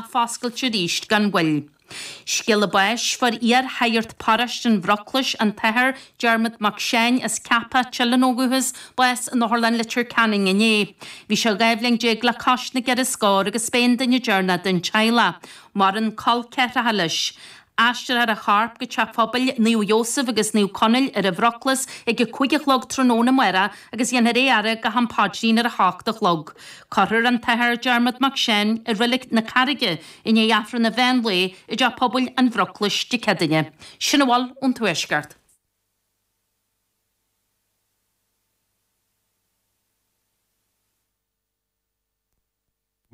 foscailte arís gan mhoill. Scéala báis Fuair iar-shagart Paróiste an Bhroclais, an tAthair Dermot Mac Seáin as Ceapach Teileann ó dhúchas, bás in Otharlann Leitir Ceanainn inné. Bhí sé dhá bhliain déag le cois na gceithre scór agus b'é an duine deireanach den teaghlach. Maireann col ceathracha leis. Aistreofar a chorp go Teach Pobail Naomh Iósaf agus Naomh Conaill ar an Bhroclais ag a cúig a chlog tráthnóna amárach agus dhéanfar é a fhaire go ham paidrín ar a hocht a chlog. Cuirfear an tAthair Dermot Mac Seáin i Reilic na Carraige i ndiaidh Aifreann an Mheán Lae i dTeach Pobail an Bhroclais Dé Céadaoine. Sin a bhfuil ón Tuaisceart.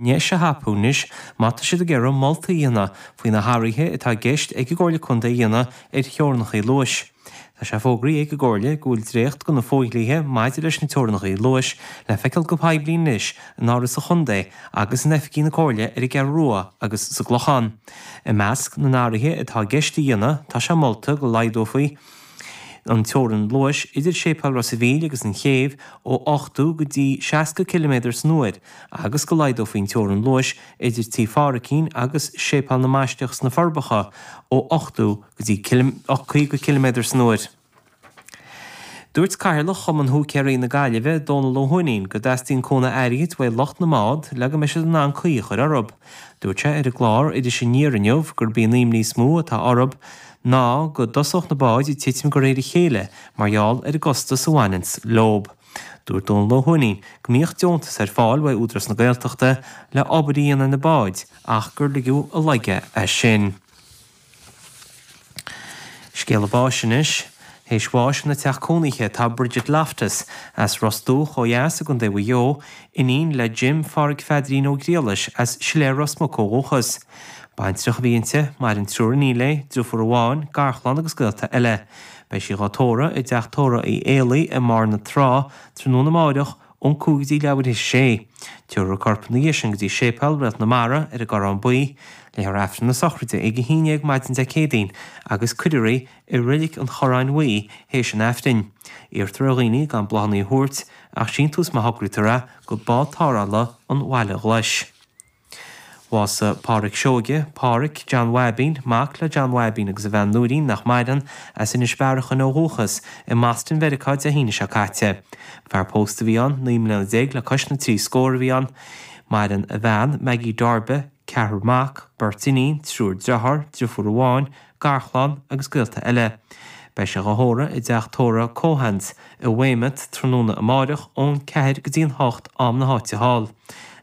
ndeis a thapú anois má tá siad ag iarraidh moltaí a dhéanamh faoi na hathruithe atá i gceist ag an gComhairle Contae a dhéanamh ar theorannachaí luais. Tá sé fógraithe ag an gComhairle go bhfuil dréacht de na fodhlíthe maidir leis na teorannachaí luais le feiceáil go poiblí anois in Áras an Chontae agus in oifigí na Comhairle ar an gCeathrú Rua agus sa gClochán. I measc na n-athruithe atá i gceist a dhéanamh tá sé molta go laghdófaí an teorainn luais idir Séipéal Ros a' Mhíl agus an chéibh ó 80 go dtí 60 ciliméadar san uair agus go laghdófaí an teorainn luais idir Tí Pháraicín agus Séipéal na mBaisteach sna Forbacha ó 80 go dtí 50 ciliméadar san uair. Dúirt Cathaoirleach Chumann Húicéaraí na Gaillimhe, Dónal Ó hUaithnín, go dteastaíonn cúnamh airgid uaidh lucht na mbád le go mbeidh siad in ann caoi a chur orthu. Dúirt sé ar an gclár Iris Aniar inniu gurb í an imní is mó atá orthu ná go dtosódh na báid ag titim de réir a chéile mar gheall ar an gcostas a bhaineanns leo. Dúirt Dónal Ó hUaithnín go mbíodh deontais ar fáil uaidh Údarás na Gaeltachta le obair a dhéanamh ar na báid ach gur ligeadh i léig é sin. Scéala báis anois. Théis bháis ina teach cónaithe tá Bridget Loftus, as Ros Dumhach ó dheas i gContae Mhaigh Eo, iníon le Jim Phádraig Pheadairín Ó Griallais as Siléar Ros Muc ó dhúchas. Baintreach a bhí inti, maireann triúr iníon léi, driofúr amháin, garchlann agus gaolta eile. Beidh sí dhá tórradh i dteach tórraidh Uí Éalaí i mBarr na Trá tráthnóna amáireach ón cúig go dtí leathuair théis a sé. Tiúrfar a corp ina dhiaidh sin go dtí Séipéal Réalt na Mara ar an gCorrán Buí. Léifear Aifreann na sochraide ag a haon déag maidin Dé Céadaoin agus cuirfear í i Reilic an Chorráin Bhuí théis an Aifrinn. Iarrtar ar dhaoine gan bláthanna a thabhairt ach síntiús má thograítear é go Bád Tarrthála an Bhaile Ghlais. Bhásaigh Pádhraic Seoige, Pádhraic, John Mháibín, mac le John Mháibín agus a bhean Nóirín nach maireann, as Inis Bearachain ó dhúchas, i mBoston, Mheiriceá, Dé hAoine seo caite. Fear pósta a bhí ann, naoi mbliana déag le cois na trí scór a bhí ann. Maireann a bhean, Maggie Darby, ceathrar mac, beirt iníon, triúr deartháir, driofúr amháin, garchlann agus gaolta eile. Beidh sé dhá thórramh i dTeach Tórraimh Keohane's i Weymouth tráthnóna amáireach ón ceathair go dtí an hocht am na háite thall.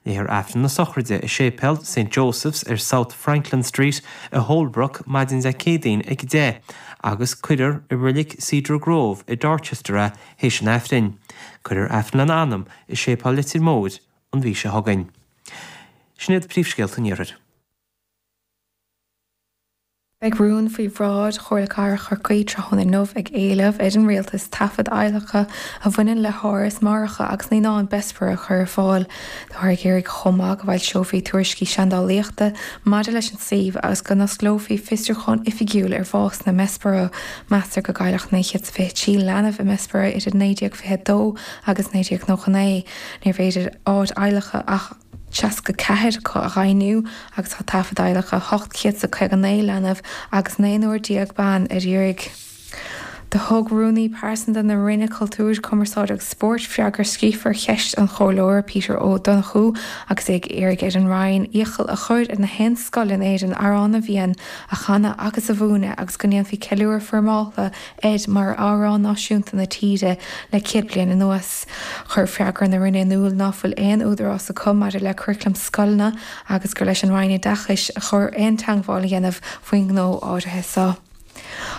Léifear Aifreann na sochraide i Séipéal Saint Joseph's ar South Franklin Street i Holbrook maidin Dé Céadaoin ag a deich agus cuirfear i Reilig Cedar Grove i Dorchester é théis an Aifrinn. Cuirfear Aifreann lena anam i Séipéal Leitir Móir an mhí seo chugainn. Sin iad príomhscéalta an iarthair. Beidh rún faoi bhráid Chomhairle Cathrach Chorcaí tráthnóna inniu ag éileamh ar an Rialtas taifead adhlactha a bhaineann le háras máithreacha agus naíonán Bessborough a chur ar fáil. Táthar ag iarraidh chomh maith go bhfoilseofaí tuairiscí seandálaíochta maidir leis an suíomh agus go n-osclófaí fiosrúchán oifigiúil ar bhásanna i mBessborough. Meastar go gcailleadh 923 leanbh i mBessborough idir 1922 agus 1999. Níorbh fhéidir áit adhlactha ach 64 acu a dhaingniú agus tá taifead adhlactha 859 leanbh agus naonúr déag ban ar iarraidh. Do thug Rúnaí Pearsanta na Roinne Cultúir, Cumarsáide agus Spóirt freagra scríofa ar cheist an Chomhairleora Peter Ó Donnchú agus é ag iarraidh ar an Roinn iachall a chur ar na haon scoil in Éirinn Amhrán na bhFiann a chanadh agus a mhúineadh agus go ndéanfaí ceiliúradh foirmeáltha air mar amhrán náisiúnta na tíre le céad bliain anuas. Chuir freagra na Roinne in iúl ná fuil aon údarás acu maidir le curaclam scoileanna agus gur leis an Roinn Oideachais a chóir aon teangmháil a dhéanamh faoin ngnó áirithe so.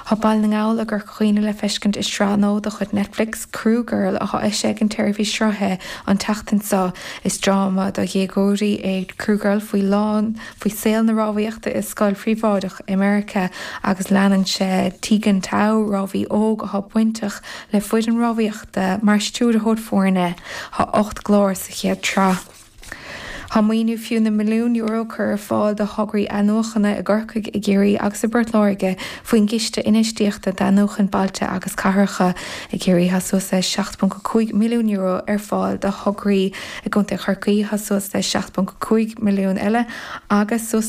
Tá Baile na nGall i gCorca Dhuibhne le feiscint i sraith nua de chuid Netflix, Crew Girl, atá eisithe ag an tseirbhís sruthaithe an tseachtain so. Is dráma do dhéagóirí é Crew Girl faoi lán. faoi saol na rámhaíochta i scoil phríobháideach i Meiriceá agus leanann sé Teagan Tao, rámhaí óg atá bainteach le foireann rámhaíochta, mar stiúrthóir foirne. Tá ocht gclár sa chéad tsraith. Tá maoiniú fiú na milliún euro curtha ar fáil do thograí athnuachana i gCorcaigh, i gCiarraí agus i bPort Láirge faoin gCiste Infheistíochta d'Athnuachan Bailte agus Cathracha. I gCiarraí tá suas le €7.5 milliún ar fáil do thograí. i gContae Chorcaí tá suas le 7.5 milliún eile, agus suas le.